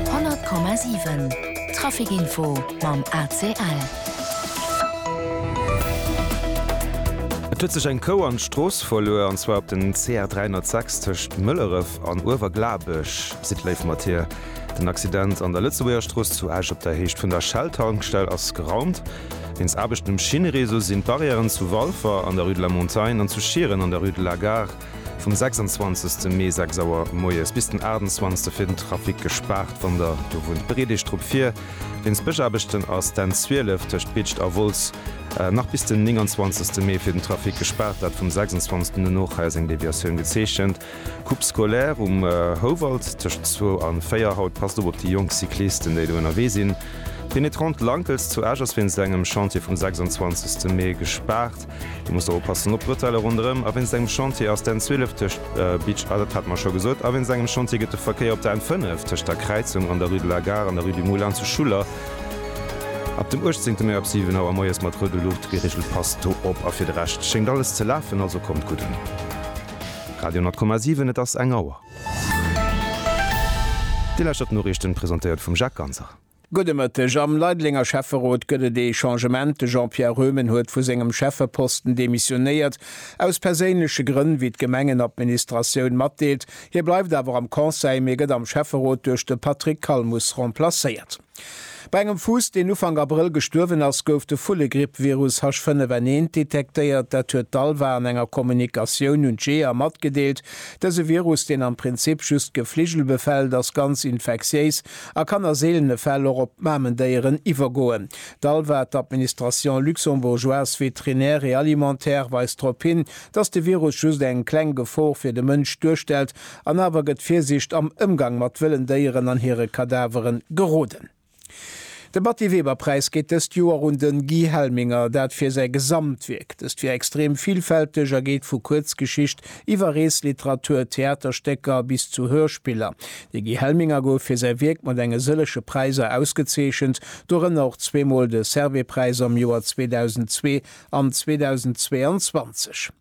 100,7 Traficinfo mam ACL. Et huet sech eng Kou an d'Strooss verluer, an zwar op den CR 306 tëscht Mëlleref an Uewerglabech, sidd léif mat hir. Den Accident an der Lëtzebuergerstrooss zu Esch op der Héicht vun der Shell-Tankstell ass geraumt. Wéinst Aarbechten um Schinnereseau sinn d'Barrièren zu Walfer an der rue de la Montagne an zu Schieren an der rue de la Gare Vum 26 Mee 6 Auer moies bis den 28 wier den Trafic gespaart, wann der do wunnt, bereet Iech drop vir. Wéinst Bëschaarbechten ass d'N 12 tëscht Bitscht a Wolz nach bis den 29 Mee fir den Trafic gespaart, dat vum 26 un no. Hei ass eng Deviatioun gezeechent, Coupe scolaire um Houwald tëscht 2 a 4. Haut passt op op déi jonk Cyclisten, déi do ënnerwee sinn. D'Pénétrante Lankels zu Esch ass wéinst engem Chantier vum 26 Mee gespaart. Du muss oppassen op d'Bretelle ronderëm a wéinst engem Chantier ass d'N 12 tëscht Bitche, ah dat hate mer scho gesot, a wéinst engem Chantier gëtt de Verkéier op der N 5 tëscht der Kräizung an der Rue de la Gare an der Rue du Moulin zu Schuller ab dem 18 Mai ab 7 Auer moies mat roude Luucht geregelt. Passt do op a fir de Rescht schéngt alles ze lafen, also kommt gutt un. Radio 10,7 Et ass eng Auer. Dir lauschtert d'Noriichten, presentéiert vum Jacques Ganser. Gudde Mëtteg. Am Leidelenger Schäfferot gëtt et ee Changement. De Jean-Pierre Röhmen huet vu sengem Schäffeposten demissionéiert, aus perséinleche Grënn, wéi d'Gemengenadministratioun matdeelt. Hie bleift awer am Conseil, mee gëtt am Schäfferot duerch de Patrick Calmus remplacéiert. Bei engem Fuuss, deen Ufank Abrëll gestuerwen ass, gouf de Vullegrippvirus H5N1 detektéiert. Dat huet d'ALVA an enger Kommunikatioun un d'Jeeër matgedeelt. Dëse Virus, deen am Prinzip just d'Gefligel befält, ass ganz infektiéis. a kann a seelene Fäll och op d'Mamendéieren iwwergoen. D'ALVA, d'Administration luxembourgeoise vétrinaire et alimentaire, weist drop hin, datt de Virus just eng kleng Gefor fir de Mënsch duerstellt an awer gëtt Virsicht am Ëmgang mat wëllen Déieren an hire Kadavere geroden. De Batty Weber Präis geet dëst Joer un den Guy Helminger, dat fir säi Gesamtwierk. Dëst wier extrem villfälteg a geet vu Kuerzgeschicht iwwer Reesliteratur, Theaterstécker bis zu Hörspiller. De Guy Helminger gouf fir säi Wierk mat enge sëlleche Präiser ausgezeechent, dorënner och zweemol de Servais-Präis am Joer 2002 an 2022.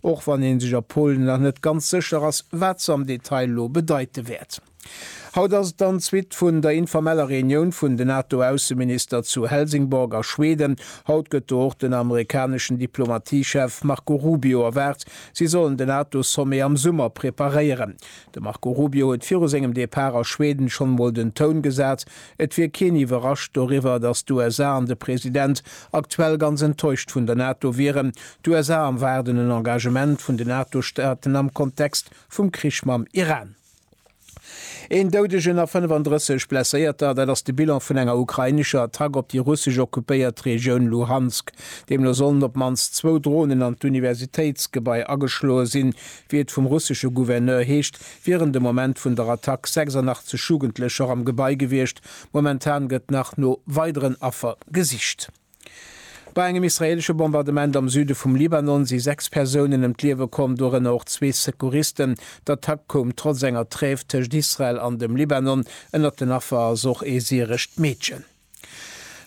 Och wann een sech a Polen nach net ganz sécher ass, wat se am Detail elo bedeite wäert. Haut ass et dann d'Suite vun der informeller Reunioun vun den NATO-Ausseminister zu Helsingborg a Schweden. Haut gëtt do och den amerikaneschen Diplomatiechef Marco Rubio erwaart. Si sollen den NATO-Sommet am Summer preparéieren. De Marco Rubio huet viru sengem Depart a Schweden schonn emol den Toun gesat, Et wier keen iwwerrascht doriwwer, datt d'USA an de President aktuell ganz enttäuscht vun der NATO wieren. D'USA erwaarden en Engagement vun den NATO-Staaten am Kontext vum Krich mam Iran. Een Doudegen a 35 Blesséierter, dat ass de Bilan vun enger ukrainescher Attack op déi russesch occupéiert Regioun Luhansk. Deemno sollen op d'mannst zwou Dronen an d'Universitéitsgebai ageschloe sinn, wéi et vum russesche Gouverneur heescht, wieren de Moment vun der Attack 86 Jugendlecher am Gebai gewiescht. Momentan gëtt nach no weideren Affer gesicht. Bei engem israeelesche Bombardement am Süde vum Libanon si sechs Persounen ëm d'Liewe komm, dorënner och zwee Secouristen. D'Attack koum trotz enger Trêve tëscht Israel an dem Libanon. Ënnert den Affer ass och ee syrescht Meedchen.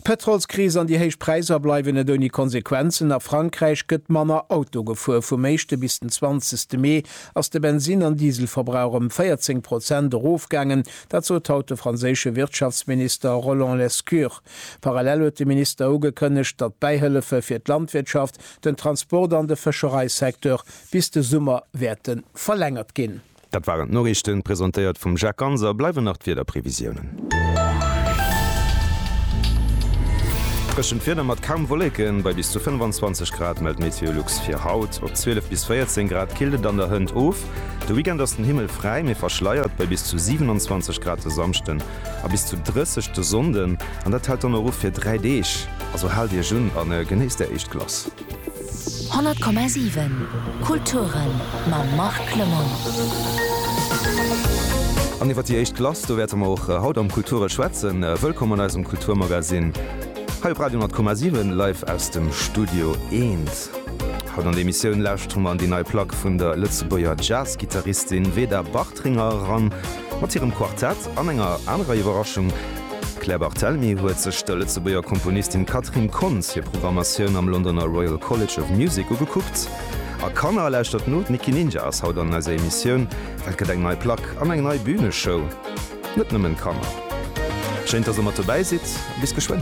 D'Pétrolskris an déi héich Präisser bleiwen net ouni Konsequenzen. A Frankräich gëtt manner Auto gefuer. Vum éischte bis den zwanzegste Mee ass de Bensinn an Dieselverbrauch ëm 14 Prozent erofgaangen. Dat sot haut de franséische Wirtschaftsminister Roland Lescure. Parallel huet de Minister ugekënnegt, datt d'Bäihëllefe fir d'Landwirtschaft, den Transport an de Fëschereisecteur bis de Summer wäerte verlängert ginn. Dat waren d'Noriichten, presentéiert vum Jacques Ganser. Bleiwen nach d'Wiederprevisiounen. Dréchent Wieder mat kaum Wolleken, bei bis zu 25 Grad mellt Meteolux fir haut. Op 12 bis 14 Grad killt et an der Hënt of. De Weekend ass den Himmel fräi, mee verschleiert, bei bis zu 27 Grad de Samschden a bis zu 30 de Sonnden. An dat hält dann och u fir dräi Deeg. Also haalt Iech un a genéisst Är éischt Glace. 100,7 Kulturen mam Marc Clement. An iwwer déi éischt Glace, do wäerte mer och haut am Kulture schwätzen. Wëllkomm an eisem Kulturmagasinn hei op Radio 10,7 live aus dem Studio Eent. Haut an der Emissioun lauschtere mer an déi nei Plack vun der Lëtzebuerger Jazz-Gittaristin Veda Bache. Tringer eran mat hirem Quartett an enger anerer Iwwerraschung, D'Claire Barthelemy huet sech der Lëtzebuerger Komponistin Catherine Kontz hir Programmatioun am Londoner Royal College of Music ugekuckt. A Kanner, lauschtert no, d'Nicky Ninja ass haut an eiser Emissioun, well et gëtt eng nei Plack an eng nei Büneshow. Net nëmmen Kanner. Schéin, dass der mat dobäi sidd a bis geschwënn.